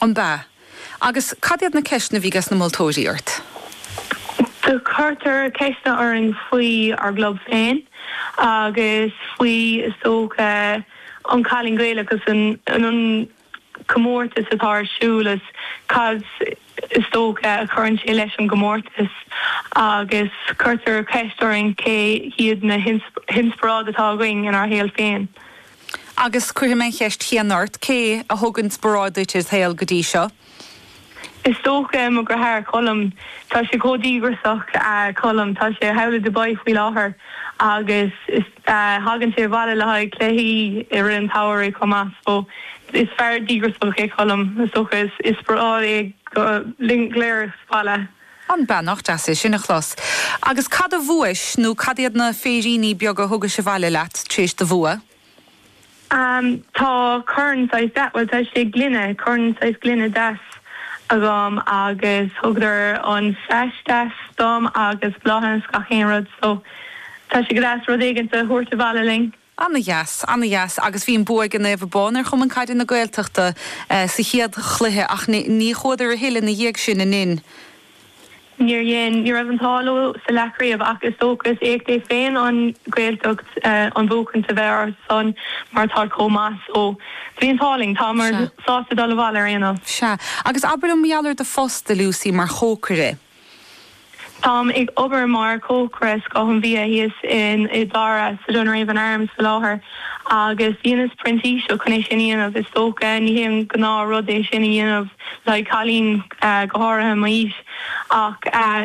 An b'ea? Agus cad iad na ceisteanna a bhí ages na moltóirí ort? Do cuireadh ceisteanna orainn faoi ár gclub féin agus faoi, is dócha, An Cailín Gaelach agus an comórtas atá ar siúl is cad, is dócha, a chuireann sé leis an gcomórtas. Agus cuireadh ceist orainn cé hiad na hinspioráidí atá againn inár shaol féin. Agus cuirfidh mé an cheist chéanna ort, cé a thugann inspioráid duit id' shaol go dtí seo? Is dócha mo dheartháir, Colm. Tá sé chomh díograsach, Colm. Tá sé thall i Dubai faoi láthair agus tagann sé abhaile le haghaidh cluichí i rith an tsamhraidh chomh maith. So, is fear díograsach é Colm. Is dócha is inspioráid é dúinn go léir ag baile. Ambaist nach deas é sin a chlos? Agus cad a bhuais, nó cad iad na féiríní beaga thugais abhaile leat tar éis do bhua? Tá corn saghas deas, bhuel, tá sé gloine, corn saghas gloine deas agam agus thugadar an sais deas dom agus bláthanna is gach aon rud so tá sé go deas rud éigint a thabhairt abhaile linn. Ana-dheas, ana-dheas agus bhí an bua ag an Naomh Abán ar Chumann Caide na Gaeltachta sa chéad chluiche ach ní chuadar a thuilleadh ina dhiaidh sin, ab in? Níor dhein, ní raibh an t-ádh leo sa leathchraobh ach is dócha is éacht é féin an Ghaeltacht an buachaint a bheith orthusan mar táid chomh maith so. Bhí an t-ádh linn, táimid sásta dul abhaile ar aon nós. Sea. Agus abair liom, mar gheall ar do phost, a Lucy, mar chócaire. Táim ag obair mar chócaire scoth an bhídh thíos in Áth Dara sa Dunraven Arms faoi láthair agus dheineas printíseacht chun é sin a dhéanamh. Is dócha ní hé an gnáth rud é sin a dhéanamh le haghaidh cailín, go háirithe i m'aois, ach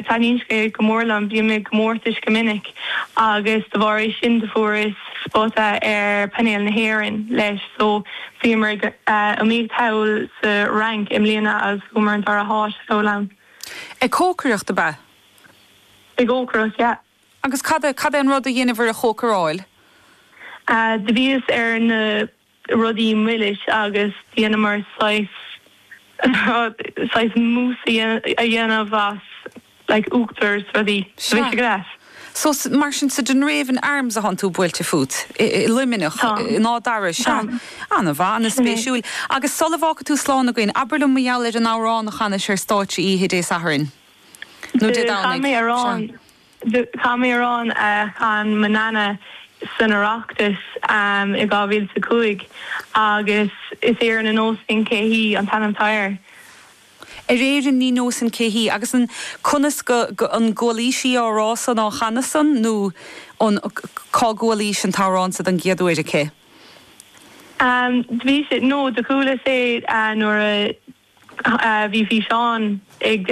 taitníonn sé go mór liom. Bíonn mé i gcomórtais go minic agus de bharr é sin do fuaireas spota ar phainéal na hÉireann leis so bhíomar ag iomaíocht thall sa Fhrainc i mbliana agus fuaireamar an dara háit thall ann. Ag cócaireacht, ab ea? Ag cócaireacht, yeah. Agus cad é, cad é an rud a dheineabhair a chócaráil? Do bhíos ar na rudaí milis agus dheineamar saghas, saghas mousse a dhéanamh as like uachtar 's rudaí. Sea. Do bhíos ag. So, mar sin, sa Dunraven Arms atánn tú buailte fút i Luimneach in Áth Dara, sea, an-mhaith, an-spéisiúil. Agus sula bhfágfaidh tú slán againn, abair liom mar gheall ar an amhrán a chanais ar stáitse oíche Dé Sathairn, nó Dé Domhnaigh, sea. Chan mé amhrán a chan mo nana san Oireachtas i 2005 agus is Éirinn ní neosfainn cé hí an t-ainm atá air. ar Éirinn ní neosainn cé hí agus conas go gcualaís í, an t-amhrán san á chanadh san nó cá gcualaís an t-amhrán so don gcéad uair aici. Do bhí sé, nó do chuala sé nuair a bhí físeán ag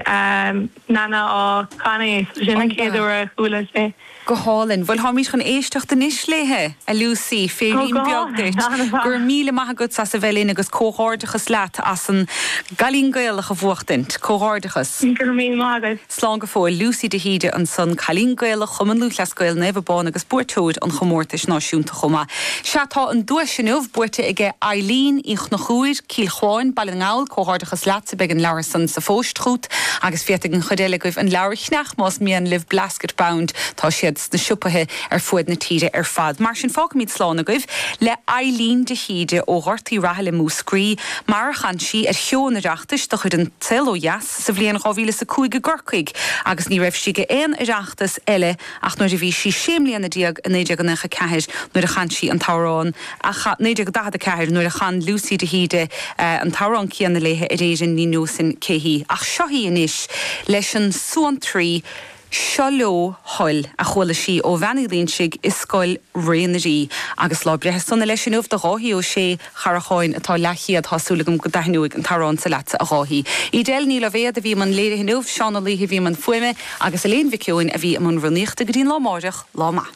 Nana á chanadh é, so sin an chéad uair a chuala sé. Go hálainn. Bhuel, táimid chun éisteacht anois léithe, a Lucy. Féirín beag duit. Go raibh míle maith agat as a bheith linn agus comhghairdeachas leat as an gCailín Gaelach a bhuachtaint. Comhghairdeachas. Go raibh míle maith agat. Slán go fóill. Lucy de hÍde ansan, Cailín Gaelach Chumann Lúthchleas Gael Naomh Abán agus buaiteoir an chomórtais náisiúnta chomh maith. Sea, tá an duais inniu buaite aige Eileen Uí Chonchúir, Cill Chuáin, Baile na nGall, Comhghairdeachas leatsa, beidh an leabhar san sa phost chút agus féadfaidh an chuid eile agaibh an leabhar a cheannach más mian libh Blasket Bound, tá siad sna siopaithe ar fuaid na tíre ar fad. Mar sin, fágfaimid slán agaibh le Eilín de hÍde ó Ghort Uí Rathaille, Múscraí, mar a chan sí ar Sheó an Oireachtais de chuid An Saol Ó Dheas sa bhliain 2005 i gCorcaigh agus ní raibh sí ag aon Oireachtas eile ach nuair a bhí sí sé mbliana déag, i 1994 nuair a chan sí an t-amhrán, a chan, 1944 nuair a chan Lucy de hÍde an t-amhrán céanna léi ar Éirinn ní neosainn cé hí. Ach seo í anois leis an suantraí Seo leo thoil, a chuala sí ó Bhean Uí Loingsigh i Scoil Raonarí agus lá breithe sona leis inniu do Dháithí Ó Sé, Chathair Chuáin, atá leathchéad, tá súil agam go dtaitneoidh an t-amhrán so leatsa, a Dháithí. Edel Ní Loibhéad a bhí i mbun léirithe inniu, Seán Ó Laoithe a bhí i mbun fuaime, agus Elaine Mhic Eoin a bhí i mbun rúnaíochta go dtí an lá amáireach, lá maith.